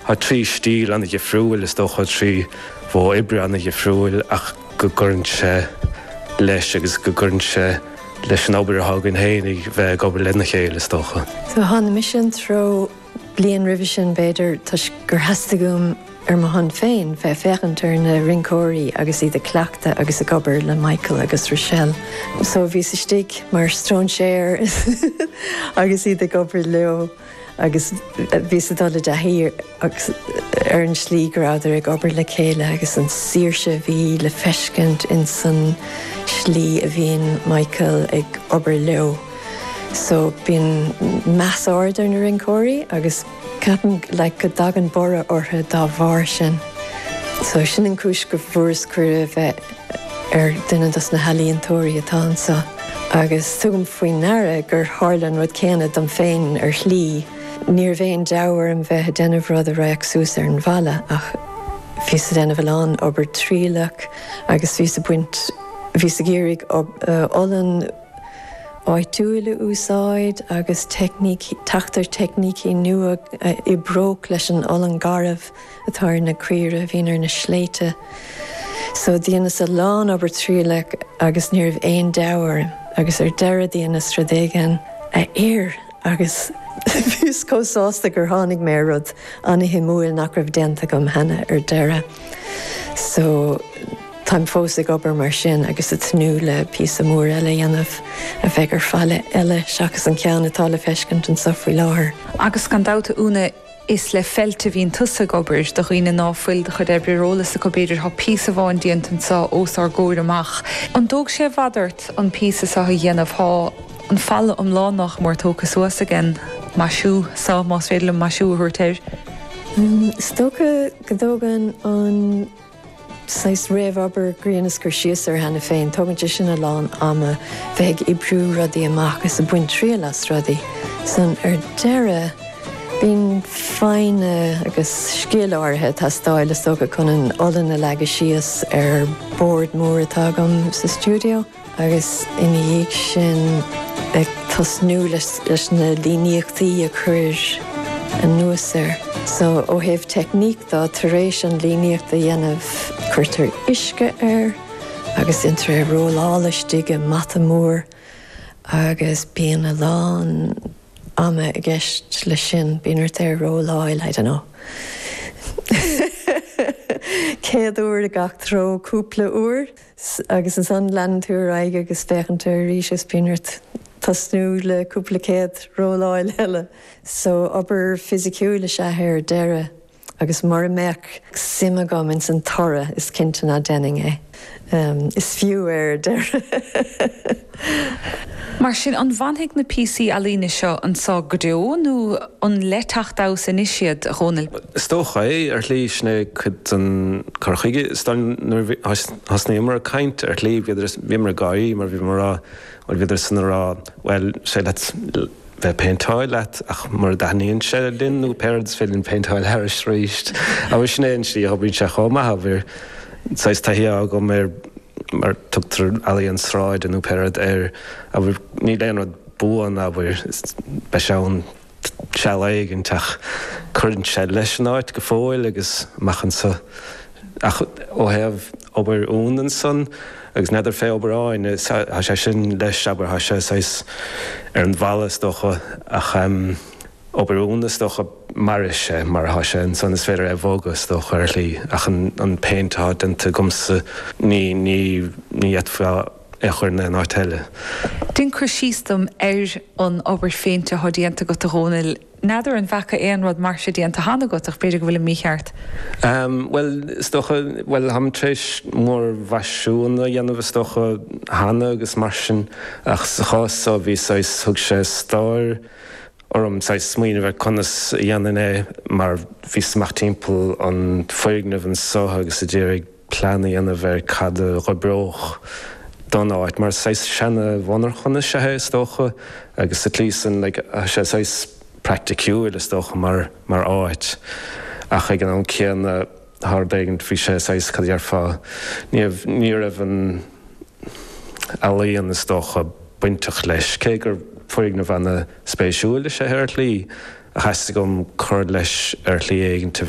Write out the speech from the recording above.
trí stíl an-difriúil, is dócha, trí mhodh oibre an-difriúil ach go gcuireann sé leis agus go gcuireann sé leis an obair atá againn féin a bheith ag obair lena chéile, is dócha. So tháinig mise an treo bliain roimhe sin, b'fhéidir, toisc gur theastaigh uaim ar mo shon féin bheith ag féachaint ar na rinceoirí agus iad ag cleachtadh agus ag obair le Michael agus Rochelle. So bhíos istigh mar stróinséar agus iad ag obair leo. agus bhíos ag dul i dtaithí ar an slí go rabhadar ag obair le chéile agus an saoirse a bhí le feiscint ins san slí a bhíonn Michael ag obair leo. So bíonn meas ana-ard ar na rinceoirí agus ceapaim like go dtagann borradh ortha dá bharr sin. So sin an cúis go bhfuaireas cuireadh bheith ar dhuine dos na healaíontóirí atá anso agus tugaim faoi naire gur tharla an rud céanna dom féin ar shlí. Ní raibh aon deabhadh orm bheith a déanamh rud a raghadh suas ar an bhfalla ach bhíos a déanamh a lán obair trialach agus bhíos a baint bhíos ag iarraidh olann áitiúil a úsáid agus teicnící, teacht ar teicnící nua a oibreodh leis an olann garbh. atá ar na caoire a bhíonn ar na sléibhte so. Dheineas a lán obair trialach agus ní raibh aon deabhadh orm agus ar deireadh dheineas rud éigin a oir agus bhíos chomh sásta gur tháinig mé ar rud ana-shuimiúil nach raibh déanta agam cheana ar deireadh. So, táim fós ag obair mar sin agus ag tnúth le píosa mór eile a dhéanamh a bheidh ar falla eile seachas an ceann atá le feiscint anseo faoi láthair. Agus gan dabht a Úna, Is le feilt a bhíonn tusa ag obair, do dhaoine ná fuil do chuid oibre ar eolas acu, b'fhéidir. Tá píosa amháin déanta anseo os ár gcomhair amach. An dtóg sé i bhfad ort an píosa seo a dhéanamh? Tá an falla iomlán nách mór tógtha suas aige. Maisiú, só, más féidir linn maisiú a thabhairt air. Is dócha go dtógann an. saghas réamhobair a dheineas cur síos air cheana féin. Tógann sé sin a lán ama, bheith ag oibriú rudaí amach is ag baint triail as rudaí. Ansan ar deireadh, bíonn foighne agus scil áirithe ag teastáil is dócha chun an olann a leagadh síos ar bord mór atá agam sa stiúideo. agus ina dhiaidh sin ag tosnú leis na líníochtaí a chur anuas air. So, ó thaobh teicníc de, tar éis an líníocht a dhéanamh, cuirtear uisce air agus déantar é rolláil istigh i mata mór agus bíonn a lán ama i gceist leis sin, bíonn ort é a rolláil, I don't know, céad uair i gach treo cúpla uair. Agus ansan leanann tú ar aghaidh agus féachann tú arís is bíonn ort tosnú le cúpla céad rolláil eile. So obair fisiciúil is ea é ar deireadh agus mura mbeadh suim agam ins an toradh is cinnte ná déanfainn é. Is fiú é ar deireadh. Mar sin, an bhfanfaidh na píosaí ealaíne seo anseo go deo nó an le teacht anuas anois iad, a Dhomhnaill? Is dócha é, ar shlí. Sin é cuid den chur chuige. Is dóigh nuair a thosnaíomar ag caint, ar shlí, bhíodar, bhíomar ag gáirí mar bhíomar a rá, bhuel, bhíodar san a rá, bhuel, sea, let's, bheith ag péinteáil leat ach mura dtaitníonn sé linn nó pé rud é, is féidir linn péinteáil thairis arís agus sin é an tslí a oibríonn sé chomh maith a bhfuil saghas taithí agam air mar tugtar ealaín sráide nó pé rud air, bhuel níl aon rud buan, bhuel beidh sé ann seal éigint ach cuireann sé leis an áit go fóill agus amach anseo ach ó thaobh obair Eoin ansan agus n'fheadar fé obair Eoin, tá sé sin leis, abair, tá sé saghas ar an bhalla is dócha ach em. obair Eoin is dócha mairfidh sé mar atá sé ansan is féidir é a bhogadh is dócha ar shlí ach an an péint atá déanta agamsa ní ní ní fhéadfá é a chur in aon áit eile. Déan cur síos dom ar an obair phéinte atá déanta agat a Dhomhnaill. N'fheadar an bhfaca aon rud mar seo déanta cheana agat, ach b'fhéidir go bhfuilim mícheart. Bhuel, is dócha, bhuel, táim tar éis múrmhaisiúin a dhéanamh, is dócha, cheana agus mar sin, ach sa chás so, bhí saghas, thug sé stró orm saghas smaoineamh ar conas a dhéanfainn é mar bhíos amach timpeall an foirgneamh anseo agus ag iarraidh, plean a dhéanamh ar cad a dh'oibreodh don áit, mar saghas seana-mhonarchan is ea é, is dócha, agus sa tslí san, like, tá sé saghas praiticiúil, is dócha, mar, mar áit, ach ag an am céanna, tá rud éigint, bhí sé saghas, cad a dhéarfá, ní raibh, ní raibh an ealaíon, is dócha, bainteach leis, cé gur foirgneamh ana-spéisiúil is ea é ar shlí, ach theastaigh uaim cur leis ar shlí éigint, a bheadh.